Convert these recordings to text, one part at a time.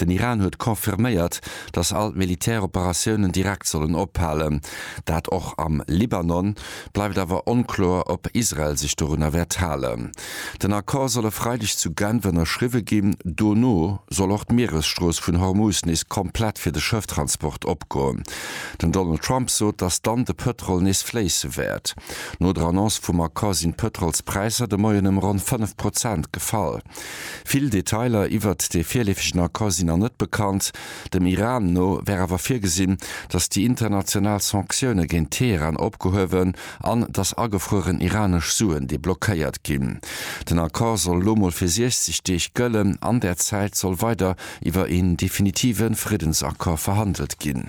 Den Iran huet confirméiert, datt all d'Militäroperatiounen direkt sollen ophalen. Dat och am Libanon. Bleift awer onkloer, ob Israel sech dorunner wäert halen. Den Accord soll e Freideg zu Genf ënnerschriwwe ginn. Dono soll och d'Mieresstrooss vun Hormuz nees komplett fir de Schëfftransport opgoen. Den Donald Trump sot, datt dann de Pëtrol nees fléisse wäert. No der Annonce vum Accord sinn d'Pëtrolspräisser de Moien ëm ronn 5 Prozent gefall. Vill Detailer iwwert dee virleefegen Accord sinn nach net bekannt. Dem Iran no wär awer virgesinn, datt déi international Sanktioune géint Teheran opgehuewen an datt agefrueren iranesch Suen deblockéiert ginn. Den Accord soll elo mol fir 60 Deeg gëllen. An där Zäit soll weider iwwer een definitive Friddensaccord verhandelt ginn.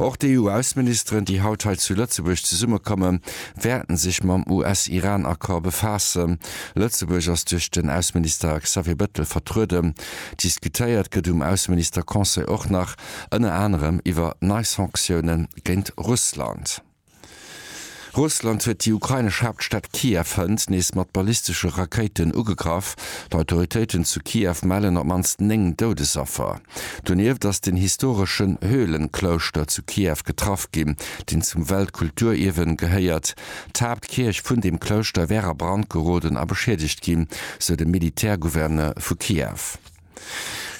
Och d'EU-Ausseministeren, déi haut hei zu Lëtzebuerg zesummekommen, wäerten sech mam US-Iran-Accord befaassen. Lëtzebuerg ass duerch den Ausseminister Xavier Bettel vertrueden. Diskutéiert gëtt um Ausseminister-Conseil och nach ënner anerem iwwer nei Sanktiounen géint Russland. Russland huet déi ukrainesch Haaptstad Kiew hënt nees mat ballistesche Rakéiten ugegraff. D'Autoritéiten zu Kiew mellen op d'mannst 9 Doudesaffer. Donieft ass den historeschen Höhlenklouschter zu Kiew getraff ginn, deen zum Weltkulturierwe gehéiert. D'Haaptkierch vun deem Klouschter wär a Brand geroden a beschiedegt ginn, sou de Militärgouverneur vu Kiew.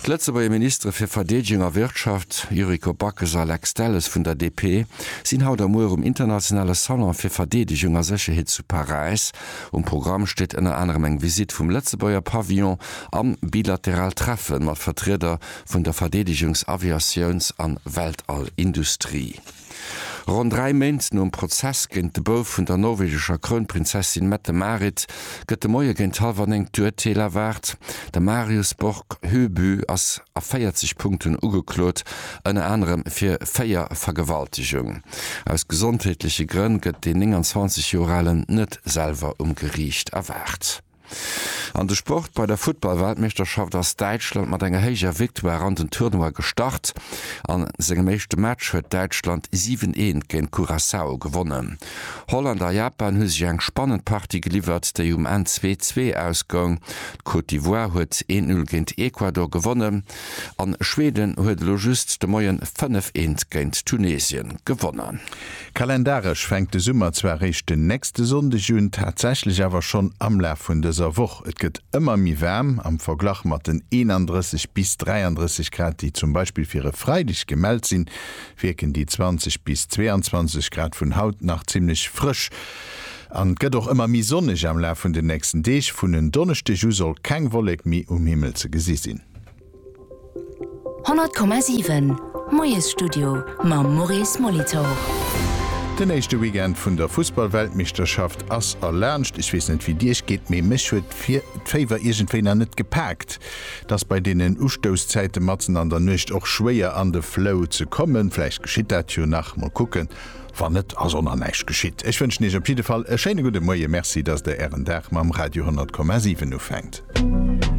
D'Lëtzebuerger Ministere fir Verdeedegung a Wirtschaft, Yuriko Backes a Lex Delles vun der DP, sinn haut a muer um internationale Salon fir Verdeedegung a Sécherheet zu Paräis. Um Programm steet ënner anerem eng Visitt vum Lëtzebuerger Pavillon a bilateral Treffe mat Vertrieder vun der Verdeedegungs-, Aviatiouns an Weltall-Industrie. Ronn dräi Méint nom Prozess géint de Bouf vun der norwegescher Krounprinzessin Mette-Marit gëtt de Moie géint hallwer néng d'Urteel erwaart. De Marius Borg Høby ass a 40 Punkten ugeklot, ënner anerem fir véier Vergewaltegung. Aus gesondheetleche Grënn gëtt deen 29 Joer Alen net selwer um Geriicht erwaart. An de Sport, Bei der Futtball-Weltmeeschterschaft ass Däitschland mat enger héijer Victoire an den Tournoi gestart. A sengem éischte Match huet Däitschland 7, 1 géint Curaçao gewonnen. Holland a Japan hu sech eng spannend Partie geliwwert, déi um Enn 2, 2 ausgoung. D'Côte d'Ivoire huet 1, 0 géint Ecuador gewonnen. An Schweden huet elo just de Moien 5, 1 géint Tunesien gewonnen. Kalendaresch fänkt de Summer zwar réischt den nächste Sonndeg un, tatsächlech awer schonn am Laf vun dëser Woch. Et gëtt ëmmer méi waarm, am Verglach mat den 31 bis 33 Grad, déi zum Beispill fir e Freideg gemellt sinn, wierken déi 20 bis 22 Grad vun haut nach zimmlech frësch. An et gëtt och ëmmer méi sonneg am Laf vun den nächsten Deeg. Vun en Donneschdeg u soll keng Wollek méi um Himmel ze gesi sinn. 100,7 Moiesstudio mam Maurice Molitor. Den éischte Weekend vun der Fussballweltmeeschterschaft ass erlaanscht. Ech weess net wéi Iech geet, mee mech huet d'Féiwer iergendwéi nach net gepaakt. Et ass bei deenen Ustousszäite matzen an der Nuecht och schwéier an de Flow ze kommen. Vläicht geschitt dat jo nach, mol kucken. Wann net, ass och nach näischt geschitt. Ech wënschen Iech op jidde Fall e schéine gudde Moie. Merci, datt Der Ären Dag mam Radio 100,7 ufänkt.